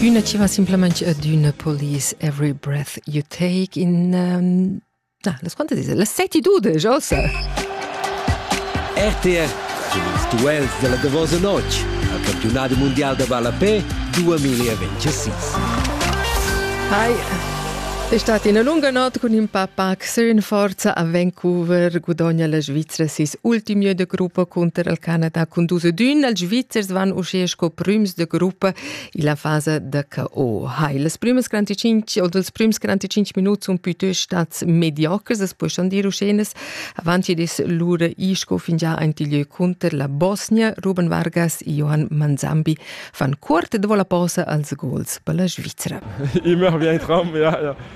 Üna chi va simplamaing adüna polis every breath you take in na, las quantas dis? Las 7 ossa. RTR ils duels della davosa notg al campionat mondial da ballapé 2026. Hi, è stata una lunga notte con il papà Sün forza a Vancouver gudogna la Svizra sis ultim jeu de gruppa cunter il Canada cun dus ed un. Els Svizzers van uschè sco prüms de gruppa illa fasa da KO. Hai, las prümas 45 oder els prüms 45 minuts sun pütüsch stats mediocres, das puoi schon dir uschenes. Avanti dis lura isco fingià aint il jeu cunter la Bosnia, Ruben Vargas e Johan Manzambi fan cuort e dovo la posa als gols per la Svizra. Immer wie ein Traum, ja, ja.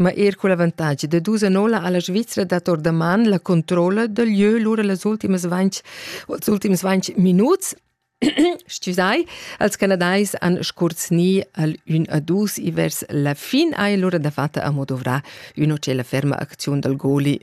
Ma er cun l'avantatg da dus annola ha la Svizra dat ordaman la controlla dal lieu lura las ultimas 20, els ultims 20 minuts Scusai, als Canadais han scurzni al un a dus vers la fin ai lura da fatta a modovra üna cela ferma acziun dal goli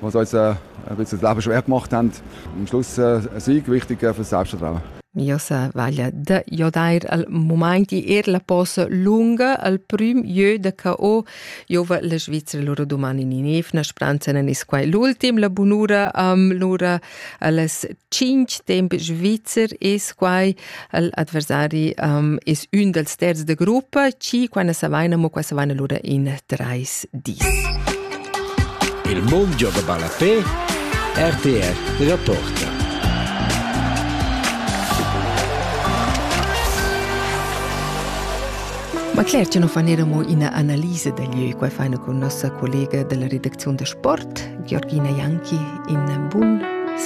was uns äh, ein bisschen das Leben schon eher gemacht haben, am Schluss äh, ein Sieg wichtig für das Selbstvertrauen. Josa vaglia de jodair al moment di er la posa lunga al prim jeu da ca o jova la Svizzera lura domani ni nev na spranza nan is quai l'ultim la bunura am lura Alles cinc temp svizzer es quai il adversari um, es ün dals terz da gruppa, ci quana savaina mo qua savaina lura in trais dis. Il mondio da Balafé, RTR Reporter. Ma cler che nu fan eir amo üna analisa da lieu. Quai faina cun nossa collega dalla redacziun da sport, Georgina Janki, in bun